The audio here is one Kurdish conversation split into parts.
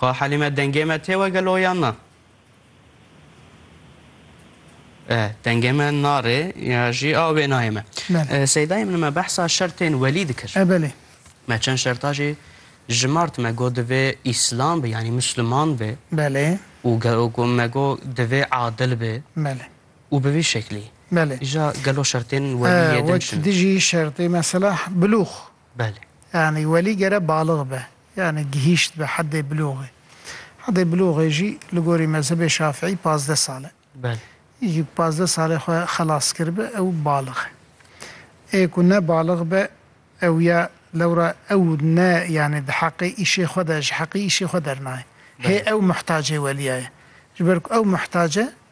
Xwe Helîme dengê me tê we gelo yan na? Dengê me narê ya jî a wê nayê me. Seydayê min me behsa şertên welî dikir. E belê. Me çend şerta jî jimart me got divê îslam be yanî musliman be. Belê. Û got me got divê adil be. Belê. Û bi vî şeklî. Belê. Îja gelo şertên welî yê din çi ne? Wek dijî şertê mesela bulûx. Belê. Yanî welî gere balix be, yanî gihîşt be hedê bulûxê. Hedê bulûxê jî li gorî mezhebê şafîî pazdeh sal e. Belê. Yekî ku pazdeh salê xwe xelas kiribe ew balix e. Ê ku ne balix be ew ya lewra ew ne yanî di heqê îşê xwe de ji heqî îşê xwe dernayê. Hê ew muhtacê weliya ye. Ji ber ku ew muhtac e.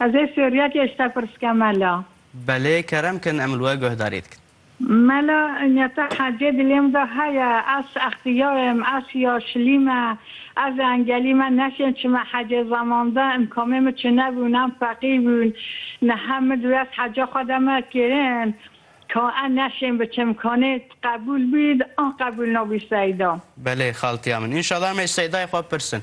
Ez ê sûriya kê işte pirsike mela. Belê kerem kin em li we guhdarî dikin. Mela inya te hecê dilê min de heye ez extiyayim ez ya şilîme ez ê engelî me neşên çime hecê zamande imkamê min çine bûn em feqîr bûn niha min divê ez heca xwe de me kirin ka ez neşên biçim kanê tu qebûl bî an qebûl nabî seyda. Belê xaltiya min. Înşala em ê ji seydayê xwe bipirsin.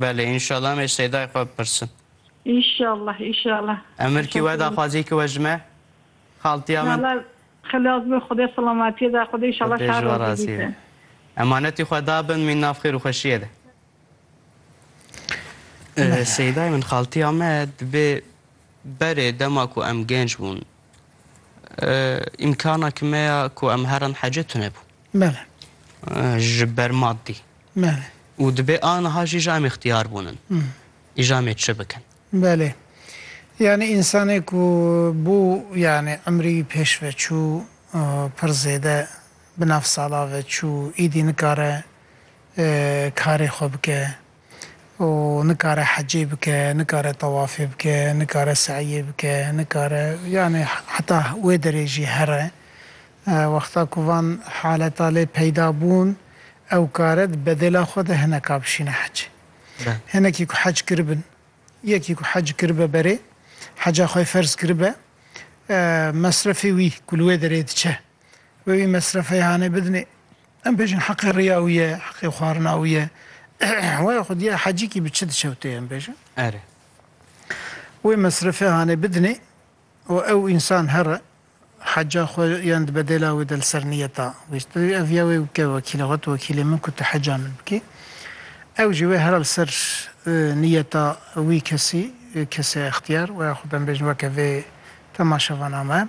Belê înşallah em ê seydayê xwe bipirsin. Înşallah înşallah. Emir kî we daxwazî kî we ji me? Xaltiya min. Nala xilas be xwedê silametiyê da xwedê înşallah Xwedê ji we şerozî razî be. bîte. Emanetî xwe da bin mîn nav xêr û xweşiyê de. Seydayê min xaltiya me dibê berê dema ku em gênc bûn Îmkana ki me ya ku em herin hecê tune bû. Bele. Ji ber maddî. Bele. Û dibê aniha jî ji em îxtiyar bûnin. Îja em ê çi bikin? Belê. Yanî însanê ku bû yanî imrî wî pêş ve çû pir zêde bi nav sala ve çû, îdî nikare karê xwe bike. û nikare hecê bike, nikare tewafê bike, nikare se'yê bike, nikare yanî heta wê derê jî here. Wexta ku van haleta lê peyda bûn ew kare di bedêla xwe de hineka bişîne hecê. Hinekî ku hec kiribin, yekî ku hec kiribe berê, heca xwe ferz kiribe, mesrefê wî ku li wê derê diçe, wê wî mesrefeyê hanê bidinê. Em bêjin heqê riya wî ye, heqê xwarina wî ye. Waya xwe diya hecîkî bi çi diçewtê em bêjin. Erê. Wê mesrefê hanê bidinê û ew însan here heca xwe yan di bedêla wê de li ser niyeta wê ji te ev ya wê bike wekîla xwe tu wekîlê min ku tu heca min bikî. Ew jî wê here li ser niyeta wî kesî kesê extiyar waya xwe em bêjin weke vê temaşevaname.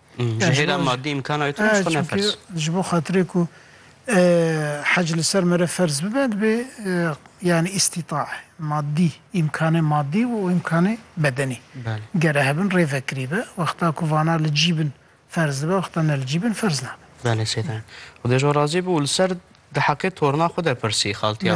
Ji hêla madî îmkana wê tune ji xwe ne ferz. Ji bo xatirê ku hec li ser me re ferz bibe dibê yanî îstîtae madî, îmkanê madî û îmkanê bedenî gere hebin rê vekirîbe. Wexta ku vana li cî bin ferz dibe wexta ne li cî bin ferz nabe. Belê seydan. Xwedê ji we razî be û li ser di heqê torna xwe de pirsî xaltiya min.